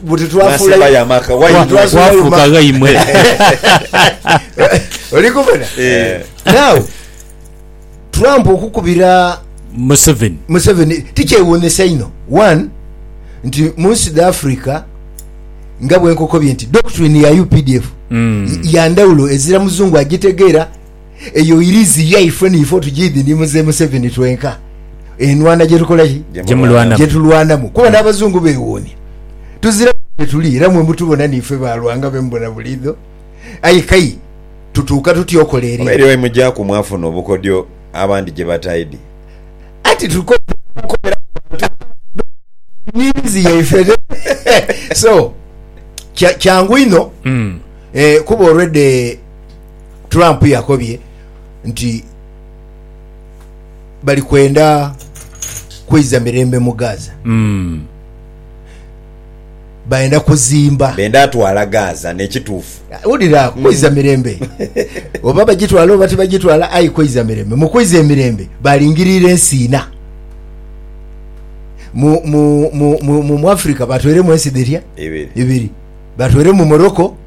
buti twafuula Bwasembayo amaka waimwe. Twafuuka ghaimwe. Oli kubona? Eh. Now, Trump okukubira Museveni. Museveni tikyewuunhisa inho. One, nti mu nsi dha Africa nga bwe nkokobye nti doctrine ya updf ya ndhawulo ezira Muzungu agitegeera Eyo irizi yaifwe niife otujiidhi ni Mzee Museveni twenka enhwana gyetukola ki? Gyetulwanamu kuba n'abazungu bewuunia tuzira buli gyetuli era mwe mutubona niife ba Lwangabe mubona buliidho aye kai tutuuka tutya okoleerera. Oba eriyo wemugyaku mwafuna obukodyo abandi gyebataidhi. Anti tukopi okukopera ku bantu abandi tulina irizi yaife ate so kyangu inho kuba olwedha e. Trump yakobye nti bali kwenda kweiza mirembe mu Gaza. Mm. Bayenda kuzimba. Benda atwala Gaza nekituufu. Wulira ako, kweiza mm. mirembe. Oba bagitwala oba tibagitwala, aye kweiza mirembe. Mu kweiza emirembe, balingirira ensi ina. Mu, mu, mu, mu, mu Afrika batweremu ensi dhirya? Ibiri. Ibiri. Batweremu Morocco.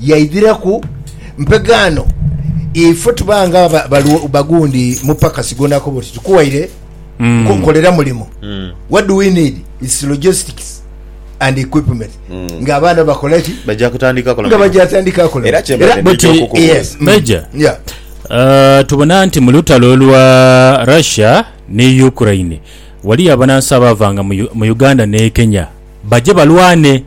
Yaidhiraku mpegaano, ife tuba nga bagundi mupakasi gw'onaakoba oti tukuwaire nkolera mulimo, what do we need it's logistics and equipment nga abaana bakola ki? Baja kutandika kola nga baja tandika kola era kyembade nidha okukubuuza yes Major yeah Uh, tubona nti mu lutalo lwa Russia ni Ukraine waliyo abanansi abaavanga mu Uganda ne Kenya baje balwane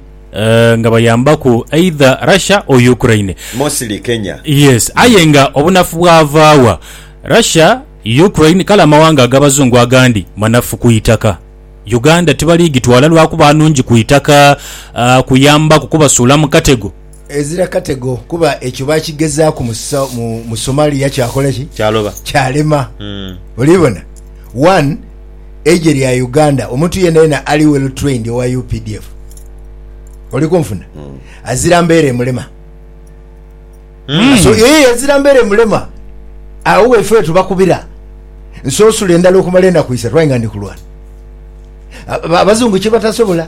nga bayambaku either Russia or Ukraine. Mostly Kenya. Yes aye nga obunafu bwavaawa? Russia, Ukraine kale amawanga agabazungu agandi manafu ku itaka. Uganda tibali gitwala lwakuba nungi ku itaka kuyambaku kubasuula mu katego. Ezira katego kuba ekyo baakigezaaku mu mu Somalia kyakola ki? Kyaloba. Kyalema. Mm. Oli bona? One, eije lya Uganda, omuntu yena yena ali well trained owa UPDF. Oli kunfuna? Mm. Azira mbeera emulema. Mm. So, ee, azira mbeera emulema. Awo wefewe tubakubira. Nsoosula endala okumala enaku isatu, aye nga ndi kulwana. Abazungu kyebatasobola.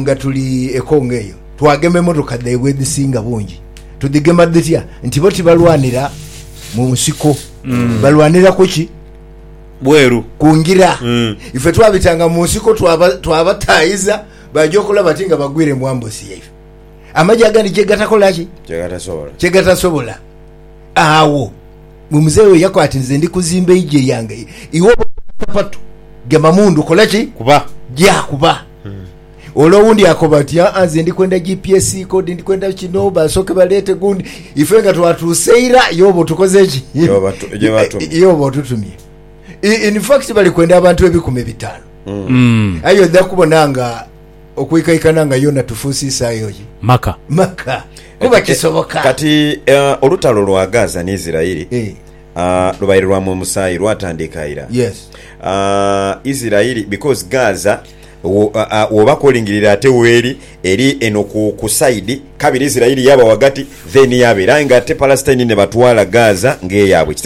Nga tuli e Congo eyo, twagema emotoka dhaibwe edhisinga bungi. Tudhigema dhitya? Nti bo tibalwanira mu nsiko, balwanira ku ki? Bweru ku ngira. Ife twabitanga mu nsiko, twaba twabataayiza baaja okola bati nga bagwire mu ambusi yaife. Amagye agandi kye gatakola ki? Kye gatasobola. Agho. Gwe muzei oyo yakwata nze ndi kuzimba eigye lyange iwe oba okola sapatu gema mundu kola ki Kuba. gya kuba. Ole owundi akoba ati aa nze ndi kwenda GPS code ndi kwenda kino basooke baleete gundi ife nga twatuuse ira ye oba otukoze ki Gyoba tu- gyoba atumye. ye oba otutumye I- in fact bali kwenda abantu ebikumi bitaanu aye odha kubona nga okwikaikana nga yona tufuuse isaayo ye. Maka. Maka. Kuba kisoboka. Kati olutalo lwa Gaza ni Isiraeli lubaire lwa mu musaayi, lwatandiika ira. Isiraeli because Gaza woba kolingirire ate weri eri eno ku side kabiri Isiraeli yaba wagati then yabeera aye nga ate Palestine nebatwala Gaza nga eyabwe.